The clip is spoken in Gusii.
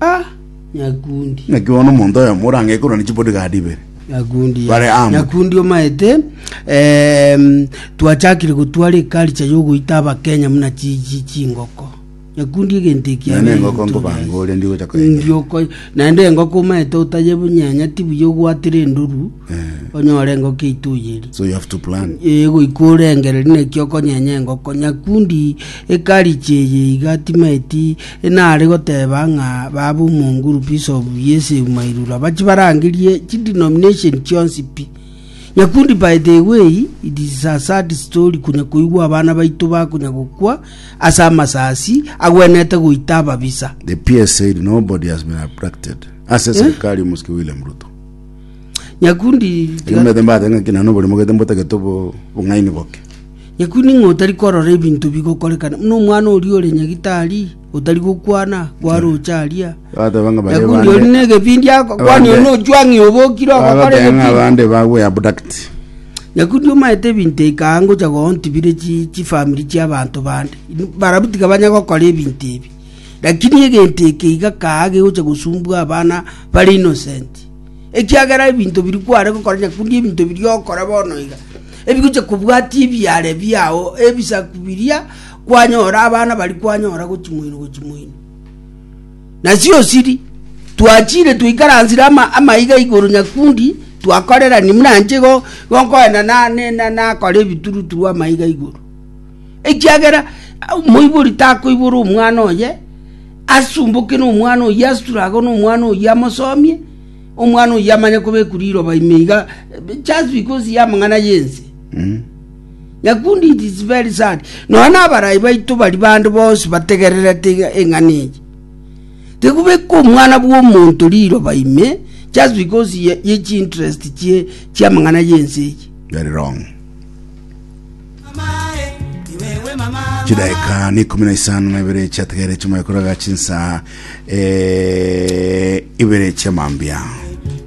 Ah, nyakundi. Naki bono omonto oyomo ore ang'e korwa ne chibodigadi ibere. Nyakundi ya- Bare amo. nyakundi omaete em, twachakire gotwara ekaricha yogoita abakenya muna chi- chi- chingoko nyakundi egento eki Nene abeire engoko ntore nkobanga ase. ore ndigocha koyenya. Ndioko naende engoko omaete otayebunyenya tibuya ogwatire endoru Eh. onyore engoko eito oyeri So you have to plan. egoika orengereri naki okonyenya engoko nyakundi ekaricha eye iga timaeti Inare goteba ng'a babe omo ngurupu is'obu y'eseuma irura bachie barangerie chidenomination chionsi pi. Nyakundi by the way, it is a sad story konya koigwa abana baito bakonya gokwa ase amasasi agwenete goita ababisa. The PS said nobody has been abducted ase serikali y'omosike William Ruto. Nyakundi Ekero mbaete mbaate ng'a ki nonye oborimo gete mbotagete obo- obong'aini boke. Nyakuwe, ning'o otari korora ebinto bigokorekana buna omwana oria ore nyagitari, otari gokwana kwaroche aria? Bateba ng'a baria Nyakuwe, ori bande negebindi ako, kwani Abande. onochwa ng'a obokire ogokora bagoteba ng'a egebindi? abande bagwe abduct. Nyakuwe, omaete ebinto ikaha ngocha goontibire chi- chifamiri chi'abanto bande, barabwo tiga banya gokora ebinto ebi. Lakini egento eke iga kaha gegocha gosumbua abana bare innocent. ekiagera ebinto biria kware gokora nyakundi ebinto biria okora bono iga, ebigochia kobwatia ebiare biao ebisaku biria kwanyora abana baria kwanyora gochimoino gochimoino. Nasi osiri twachire twaikaransire ama amaiga igoro nyakundi twakorerani muna inche igo igo nkoenda na- ne- na- nakora ebituruturu amaiga igoro. Ekiagera omoibori takoibora omwana oye asumboke nomwana oyio asure agwo nomwana oyio amosomie, omwana oyio amanye kobekwa riroba ime iga just because ya amang'ana yense. Mm. Nyakundi it is very sad. Nonya na abarai baito bari bande bonsi bategererete iga- eng'ana eye. Tikobeka omwana bwa omonto riroba ime just because ye ye chi interest chie chia amang'ana yense eye. Very wrong. Chidaeka ni ikumi na isano na ibere chiategeire chimwe koraga chinsa eh, ibere chia mambia.